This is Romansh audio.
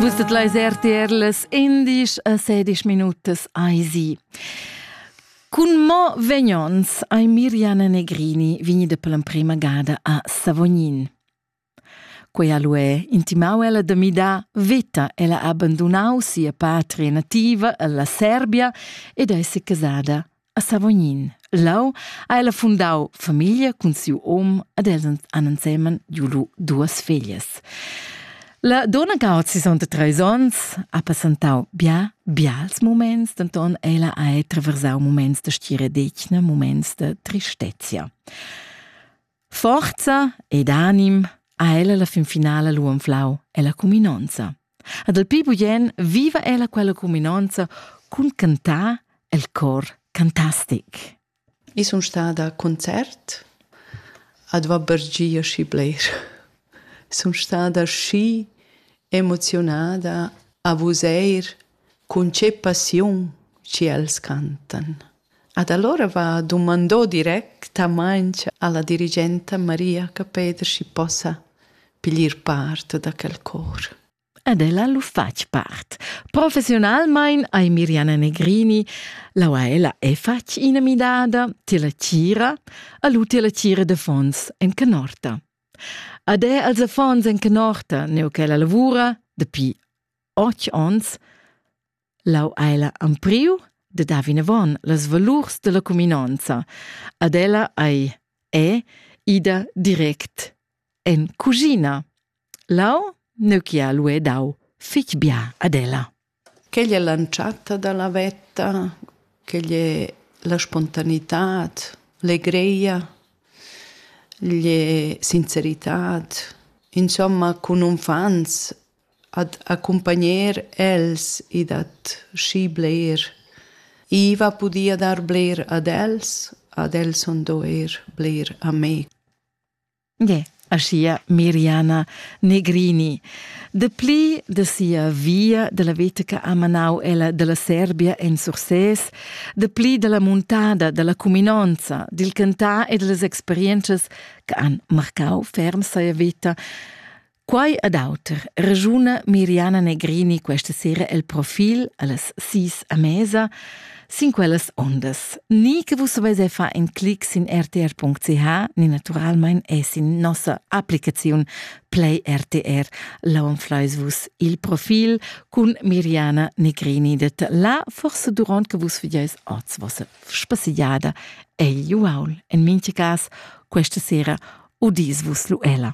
Vus det leis RTRs indisch a sedisch minutas ai si. Cun mo vegnons ai Miriana Negrini vignida per l'emprema gada a Savognin. Quella lu è intimau ella da midar veta. Ella ha abbandonau sia patria nativa alla Serbia ed è se casada A Savognin. Lau ha ella fundau famiglia cun siu om ed els han ensemen giulu duas feglias. La donna che ha 63 onns ha passentau bia, bials moments, denton ella ha traversau moments da stira detgna, moments da tristezia. Forza ed anim ha ella la fin finala lu anflau ella cuminonza. Ad el pli bugen viva ella quella cuminonza cun cantar el cor cantastic. I sun stada a concert, ad va bergia schi bler. Sun stada schi emozionada a vuseir cun che passiun ci els cantan. Ad allora va dumandò directamaing alla dirigenta Maria Capeder schi possa piglier part da quel cor. Ed ella lu fatg part. Professionalmein ei Miriana Negrini, laua ella è fatg ina midada, ti la tira, a lu ti la tira de fons en canorta. Ad è als affons en canorta, neu che la lavura, dapi otg ons, Lau ei la ampriu de dar vinavon las valurs della cuminonza. Ad ella ei è ida direct en cugina. Lau neuchia lu è dau fich bia ad ella. Quella è l'antschatta dalla vetta, quella è la spontaneità, l'egreia, le sincerità, insomma, con un fans ad accumpagner els e dad schi bler. I va pudia dar bler ad els, ad els sun do eir bler a me. Ie, aschia Miriana Negrini. Dapli de sia via della veta che ha manau ella della Serbia en Sursès, dapli della muntada, della cuminonza, dil cantar e delle esperiences che han marcau ferm sia veta, Quai ed auter ragiuna Miriana Negrini questa sera el profil allas sis a mesa sin quellas ondas. Ni che vus avais fa in clic sin rtr.ch ni naturalmein è sin nossa applicaziun Play RTR laun fleis vus il profil cun Miriana Negrini det la forse durant che vus vediais oz vossa spassigliada e Juaul. In mincha cas questa sera udis vus Luella.